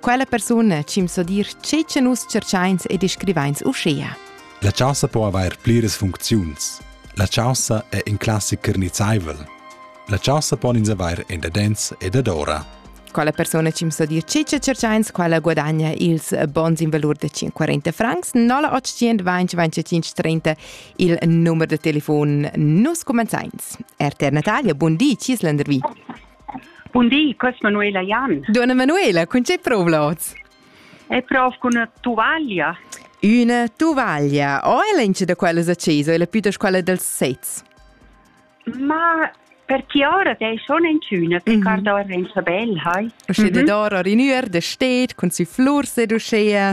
Quella persuna cimso dir che che nus cerchains e descrivains uschea. La chaussa po avair pliras funcziuns. La chaussa è in classiker nizzaivel. La chaussa pon ins avair in dadens e dadora. Quella persona cimso dir che che cerchains quella guadagna ils bons in valur de 540 francs 0825 il numero de telefon. Nus comenzains. RTR Natalia, buon di, Cislandervi. Bun di, questa Manuela Jan. Donna Manuela, con c'è prova oz? E provo con una tuvaglia. Una tuvaglia. O è l'ince da quella accesa, è la più da squadra dels sets? Ma per chi ora è schon in schöne, perché mhm. da Renzo Bell, hai? Usche mhm. de dor or in ür de steet, con si flur se duschea.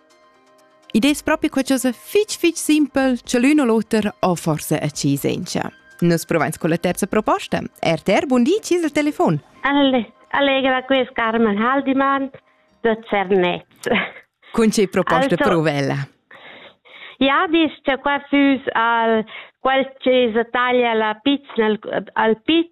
Id es propi qualchosa fich fich simpel cha l'ün o l'oter ho forsa accis sencha. Nus provains con la terza proposta. RTR, bun di, ci il telefon. Alle, allegra quest Carmen Haldimann da Cernez. Con che proposta also, provella? Ja, dis cha qua füs al quel che taglia la pizza al, al pizza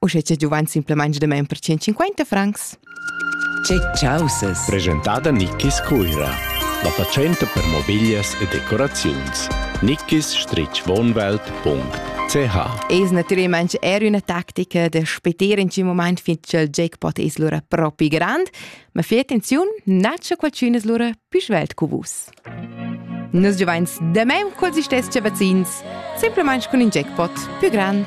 Uschè che giuvan simplamain demain per 150 francs. Che chausas! Presentada Nickis Cuira. La fatschenta per mobiglias e decoraziuns. nickis-wohnwelt.ch Es natüralmaing eir üna tactica da speter in tschin mumaint fin cha'l jackpot es lura propi grand, ma fai attenziun, na cha qualchün es lura pü svelt cu vus. Nus giuvains damain culs istess vazzins, simplamaing cun ün jackpot pü grand.